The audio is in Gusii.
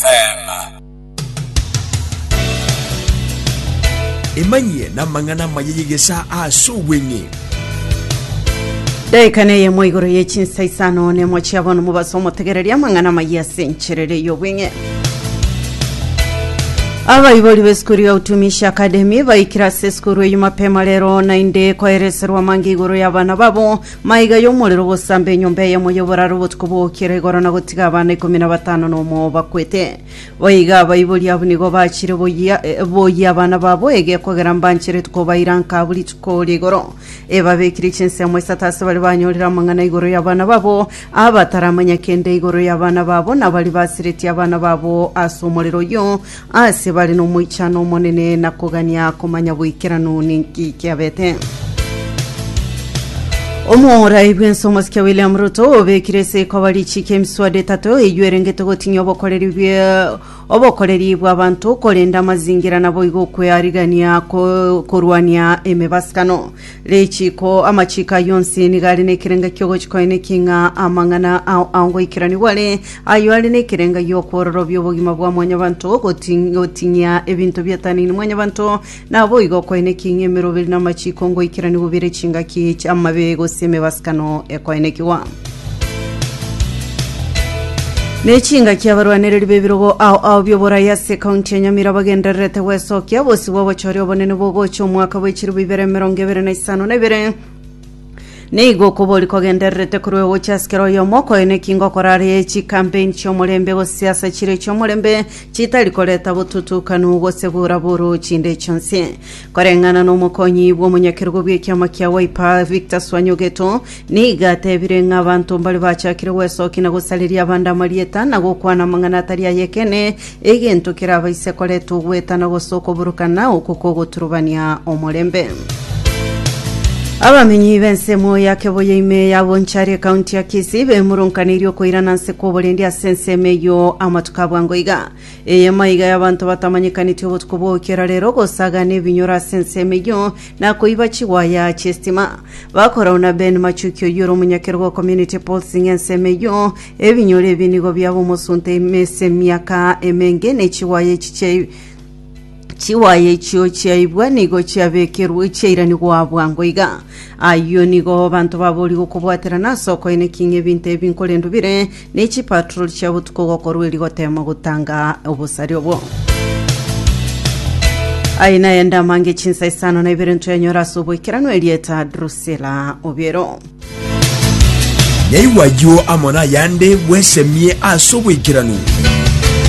Selah. Emanyie namang'ana amaya y'egesaa ase obweng'e. Daika neyemo igoro ye chinsa isano nemo chia bono mobase omotegereria amang'ana amaya ase encherero ey'obweng'e. Abaibori b'esukuru ya Utumishi Academy baikire ase esukuru eyio mapema rero naende koereserwa amange igoro y'abana babo Maiga y'omorero ogosaamba enyomba eyemo y'oboraro obotuko bw'ogokiera igoro na gotiga abana ikomi na batano nomo bakwete. Boigo abaibori abwo nigo bachire boyia eh, boyia abana babo egeo kogera mbanche rituko bairanka abwo rituko rigoro. Ebabekire chinsemo isato ase bare banyorire amang'ana igoro y'abana babo, abataramanya kende igoro y'abana babo, na baria basiretie abana babo ase omorero oyio, Aase bare nomoichano omonene na kogania komanya boikeranu ninki kiabete? Omorai bwense omosike William Ruto obekire ase koba richiko emiswada etato eyio erengete gotinyia obokoreri bwe obokoreri bw'abanto korenda amazingira naboigo kwearigania ko- korwania emebasano Richiiko amachiiko ayio onsi nigo are nekerenga ki'ogochia koeneki ng'a amang'ana ao ao ngoikeranigwa are, ayio are nekerenga gi'okwororobia obogima bwa mwanyabanto, goti- goting'ia ebinto biatanini mwanyabanto, naboigo okoeneki ng'a emeroberi namachiiko ngoikeranigwa bire chingaki chi'amabe gose emebasakano ekoenekigwa. Ne chingaki abarwanereri b'ebirogo ao ao bi'oborai ase ekaunti ya Nyamira bagendererete gwesokia bosi bw'obochore obonene bogocha omwaka bwe chiribu ibere emerongo ebere na isano na ibere. Nigo okobori kogendererete korwa egocha ase kera oyomo okoe nekinga okora are chikampeini chi'omorembe gose siasa chire chi'omorembe chitari koreta botutukanu gose bura buru chinde chionsi. Koreng'ana n'omokonyi bw'omonyakerogo bw'ekiama kia Wiper, Victor Swanyogeto, nigo atebire ng'a abanto mbare bachakire gwesokia na gosareria abande amarieta na gokwana amang'ana atari ay'ekeene, egento kerabaise koreta ogweta na gose okoborokana oko kogoturubania omorembe. Abamenyi b'ensemo ya Keboyo ime ya Bonchari ekaunti ya Kisii bemoronkaneirie okoirana nse kw'oborendi ase ensemo eyio amatuko abwango iga. Eye maiga y'abanto batamanyekaneti obotuko bw'ogokiera rero, gosaga nebinyoro ase ensemo eyio, na koiba chiwaya chi'estima. Bakorau na Ben Machuki oyio ore omonyakerogo o Community Pulsing ensemo eyio. Ebinyoro ebi nigo biaba omosunte ime ase emiaka emenge, ne chiwaya echi chia Chiwaya echio chiaibwa nigo chiabekerwe chiairanigwa bwango iga. Ayio nigo abanto baborie gokobwaterana ase okoineki ng'a ebinto ebi nkorendo bire, ne chipatroli chia botuko gokorwa erio goteema gotanga obosari obo. Aye naende amange chinsa isano na ibere ntwenyora ase oboikeranu erieta Drusila Obiero. Nyaigwa ayio amo nayande bwesemie ase oboikeranu.